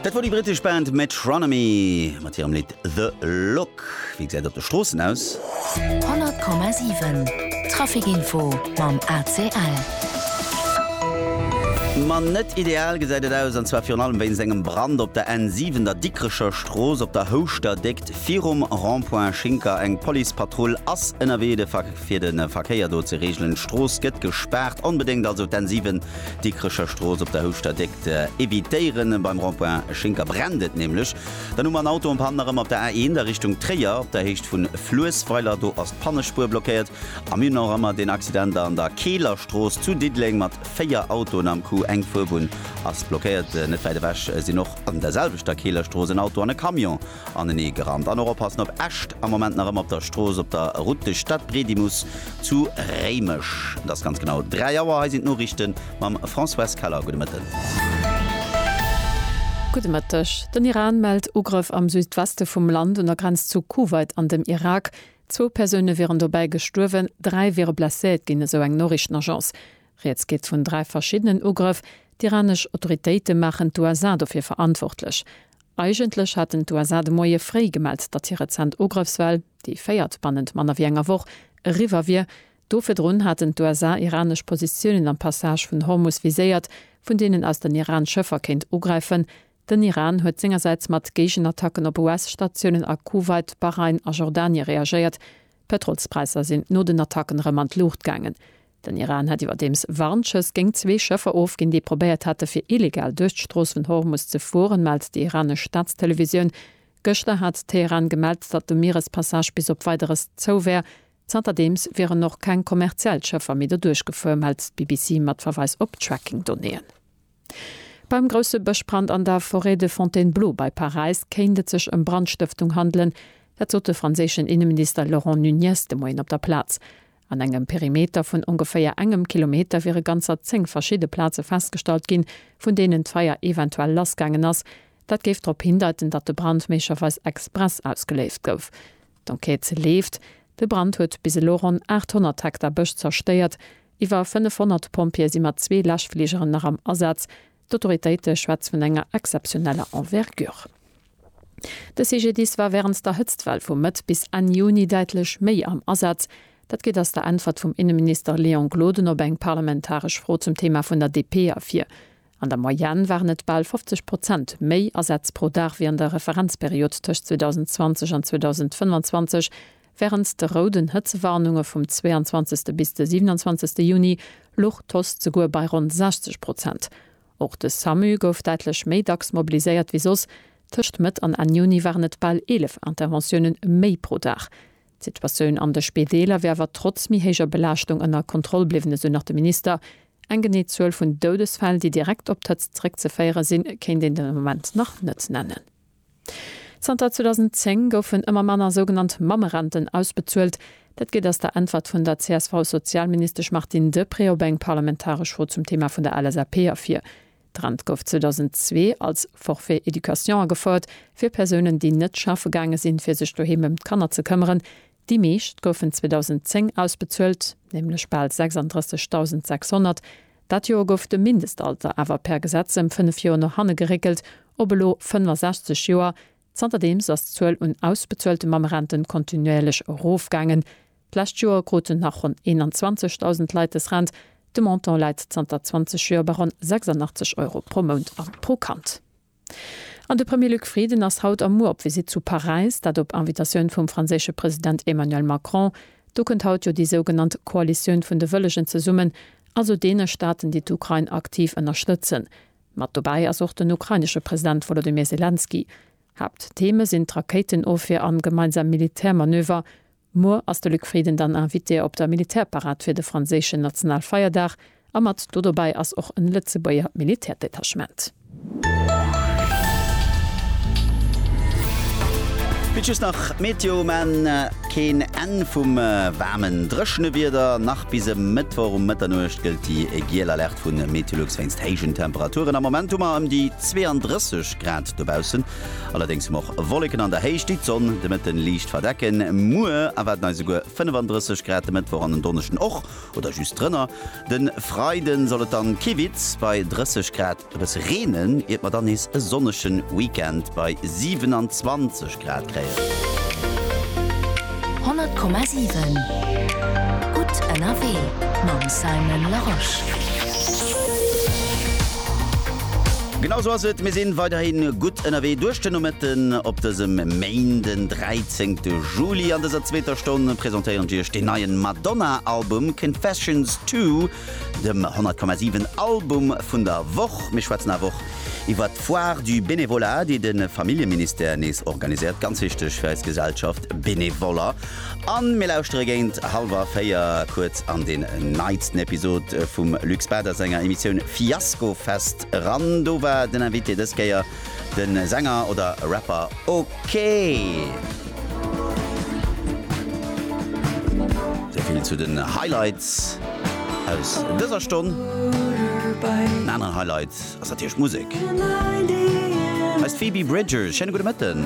Dat wor déi brittesch Band Metronomy mat hirem Lidd The Look. Wéi gesäit et op de Stroossen aus? 100,7 Traficinfo mam ACL. Ma net ideal gesäit et aus, an zwar virun allem wéinst engem Brand op der N7, der Dikrecher Strooss op der Houschter Déckt virum Rond-point Schinker. Eng Policepatrull ass ënnerwee fir de Verkéier do ze reegelen. D'Strooss gëtt gespaart. Onbedéngt also d'N7 Dikrecher Strooss op der Houschter Déck ze evitéieren. Beim Rond-point Schinker brennt et nämlech. Dann hu mer en Auto um Pan erëm op der A1 a Richtung Tréier op der Héicht vu Fluessweiler. Do ass d'Pannespuer blockéiert. A mir hunn nach ëmmer deen Accident an der Keeler Strooss zu Diddeleng mat 4 Autoen am Coup. Eng Fuerbunn ass blockéiert. Net wäit ewech sinn och an der selwechter Keeler Strooss en Auto an e Camion. anenee gerannt an och oppassen op Äscht. Am Moment nach ëmmer op der Strooss op der Route de Stadbredimus zu Réimech. Et ass ganz genau 3 Auer. Hei sinn d'Noriichte mam Françoise Keller. Gudde Mëtten. Gudde Mëtteg. Den Iran mellt Ugrëff am Südweste vum Land un der Grenz zu Kuwait an dem Irak. Zwou Persoune wieren dobäi gestuerwen, dräi wiere blesséiert ginn, esou eng Noriichtenagence. Rieds geet vun dräi verschiddenen Ugrëff. D'iranesch Autoritéite maachen d'USA dofir verantwortlech. Eigentlech haten d'USA de Moie fréi gemellt, datt hir rezent Ugréffswell, déi véiert bannent manner wéi enger Woch, eriwwer wier. Do virdrun haten d'USA iranesch Positiounen am Passage vun Hormus viséiert, vun deenen aus den Iran Schëffer kéint ugräifen. Den Iran huet sengersäits mat Géigenattacken op US-Statiounen a Kuwait, Bahrain a Jordanie reagéiert. D'Pëtrolspräisser sinn no den Attacken erëm an d'Luucht gaangen. Den Iran hätt iwwerdeems Warnschëss géingt zwee Schëffer ofginn, déi probéiert hätte fir illegal duerch d'Strooss vun Hormus ze fueren, mellt déi iranesch Staatstelevisioun. Gëschter hat Teheran gemellt, datt de Mierespassage bis op Weideres zou wär. Zanterdeems wieren och keng kommerziell Schëffer méi doduerch gefuer, mellt d'BBC mat Verweis op Tracking-Donnéeën. Beim grousse Bëschbrand an der Forêt de Fontainebleau bei Paräis kéint et sech ëm Brandstëftung handelen. Dat sot de franséischen Inneminister Laurent Nunez de Moien op der Plaz. An engem Perimeter vun ongeféier engem Kilometer wiere ganzer zéng verschidde Plaze festgestallt ginn, vun deenen d'Feier eventuell lassgaangen ass. Dat géif drop hindeiten, datt de Brand méiglecherweis express ausgeléist gouf. D'Enquête leeft. De Brand huet bis elo ronn 800 Hektar Bësch zerstéiert. Iwwer 500 Pompjeeë si mat zwee Läschfligeren nach am Asaz. D'Autoritéite schwätz vun enger exzeptioneller Envergure. De CGDIS war während der Hëtztwell vu Mëtt bis Enn Juni däitlech méi am Asaz. Dat geet aus der Äntwert vum Inneminister Léon Gloden op eng parlamentaresch Fro zum Thema vun der DP ervir. An der Moyenne waren et bal 50 Prozent méi Asätz pro Dag wéi an der Referenzperiod tëscht 2020 an 2025, Wärend de rouden Hëtzewarnunge vum 22. bis de 27. Juni luch d'Post souguer bei ronn 60 Prozent. Och de Samu gouf däitlech méi dacks mobiliséiert wéi soss, tëscht Mëtt an Enn Juni waren et bal 11 Interventioune méi pro Dag. D'Situatioun an de Spideeler wier awer trotz méi héijer Belaaschtung ënner Kontroll bliwwen, esou nach de Minister. Eng genee Zuel vun Doudesfäll, déi direkt op d'Hëtzt zeréckzeféiere sinn, kéint een de Moment nach net nennen. Zanter 2010 goufen ëmmer manner sougenannt Mammerenten ausbezuelt. Dat geet aus der Äntwert vun der CSV-Sozialministesch Martine Deprez op eng parlamentaresch Fro zum Thema vun der LSAP ervir. D'Rent gouf 2002 als Forfait éducation agefouert fir Persounen, déi net schaffe gaange sinn, fir sech doheem ëm d'Kanner ze këmmeren. Déi meescht goufen 2010 ausbezuelt, nämlech bal 36.600. Dat Joer gouf de Mindestalter awer per Gesetz ëm fënnef Joer no hanne geréckelt op elo 65 Joer. Zanterdeems ass d'Zuel un ausbezuelte Mammerenten kontinuéierlech erofgaangen. D'lescht Joer kruten nach ronn 21.000 Leit des Rent. De Montant läit zanter 20 Joer bei ronn 86 Euro pro Mount a pro Kand. An de Premier Luc Frieden ass haut a muer op Visitt zu Paräis, dat op Invitatioun vum franséische President Emmanuel Macron. Do kënnt haut jo déi sougenannt Koalitioun vun de Wëllegen zesummen, also deene Staaten, déi d'Ukrain aktiv ënnerstëtzen. Mat dobäi ass och den ukrainesche President Wolodymyr Selenskyj. Haapttheme sinn d'Rakéitenofwier an gemeinsam Militärmanöver. Muer ass de Luc Frieden dann Invité op der Militärparad fir de franséischen Nationalfeierdag a mat do dobäi ass och en Lëtzebuerger Militärdetachement. Bitt just nach d'Meteo, mä keen Enn vum waarmen, dréchene Wieder. Nach bis e Mëttwoch um Mëtternuecht gëllt déi giel Alerte vu Meteolux wéinst héijen Temperaturen. Am Moment hu mer ëm déi 32 Grad dobaussen. Allerdéngs hu mer och Wolleken an der Héicht, déi d'Sonn de Mëtten liicht verdecken. Muer erwaarden eis esouguer 35 Grad, de Mëttwoch an den Donneschden och oder just drënner. De Freide soll et dann kiwitz bei 30 Grad e bësse reenen, iert mer dann nees e sonnege Weekend bei 27 Grad kréien. 100,7 Gutt ënnerwee mam Simon Larosche. Genau sou ass et, mir sinn weiderhi gutt ënnerwee duerch de Nomëtten op dësem Main, den 13 Juli. An dëser zweeter Stonn presentéieren ech iech den neien Madonna Album Confessions Two, dem 100,7 Album vun der Woch. Mir schwätzen awer och iwwert d'Foire du Bénévolat, déi de Familljeministère nees organiséiert, ganz wichteg fir eis Gesellschaft, Benevoller. An mir lauschtere géint halwer 4 kuerz an den neitsten Episod vum Luc Bäder senger Emissioun Fiaskofest eran. Do war den Invité dës Kéier de Sänger oder Rapper OK. Souvill zu den Highlights aus dëser Stonn. En aneren Highlight ass natierlech d'Musek. Hei ass d'Phoebe Bridgers. Schéine gudde Mëtten.